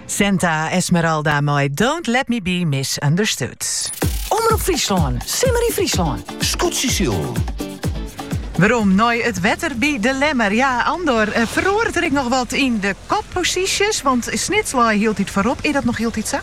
Santa Esmeralda mei Don't Let Me Be Misunderstood. Omroep Fryslân, simmer yn Fryslân. Skûtsjes. Werom nei it wetter by de Lemmer. Ja, Andor, eh, feroaret er ek noch wat yn de kopposysjes? Want Snits lei hieltyd foarop. Is dat noch hieltyd sa?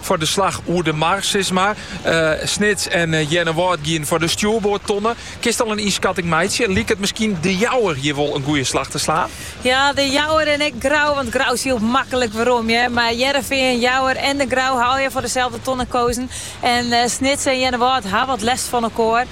foar de slach oer de mar, sis mar. Snits en Earnewâld geane foar de stjoerboardtonne. Kinst al in ynskatting meitsje? Liket miskien De Jouwer hjoed wol in goede slach te slaan? Ja, De Jouwer en ek Grou, want Grou sylt maklik werom, hear. Mar Hearrenfean, Jouwer en De Grou ha foar deselde tonne kozen. En Snits en Earnewâld ha wat lêst fan elkoar.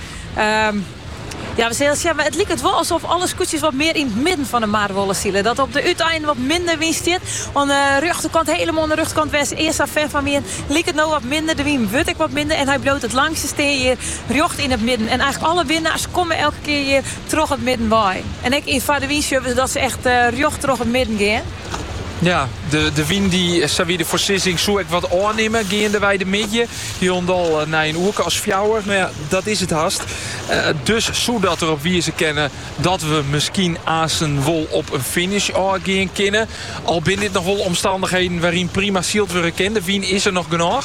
Ja, we sille sjen, maar it liket wol alsof alle skûtsjes wat mear yn het midden van de mar wolle sile. Dat op de uitein wat minder wyn stiet. Aan de rjochterkant, helemaal aan de rjochterkant wêr't ze earst sa'n fan fan wienen, liket no wat minder. De wyn wurdt ek wat minder en hij bliuwt het langste stean hjir rjocht yn het midden. En eigenlijk alle winnaars komme elke keer hjir troch het midden wei. En ek foar de wyn sjen we dat ze echt rjocht troch het midden gean. Ja, de, de wyn die sa wie de foarsizzing soe ek wat ôfnimme geandewei de middei. Hielendal eh, nei in oere as fjouwer. Nou ja, dat is het haast. Eh, dus soe dat erop wiezen kennen dat we misschien aansens wol op een finish ôfgean kinne. Al binne dit nog wel omstandigheden waarin prima syld wurde kin. De wyn is er nog genoeg.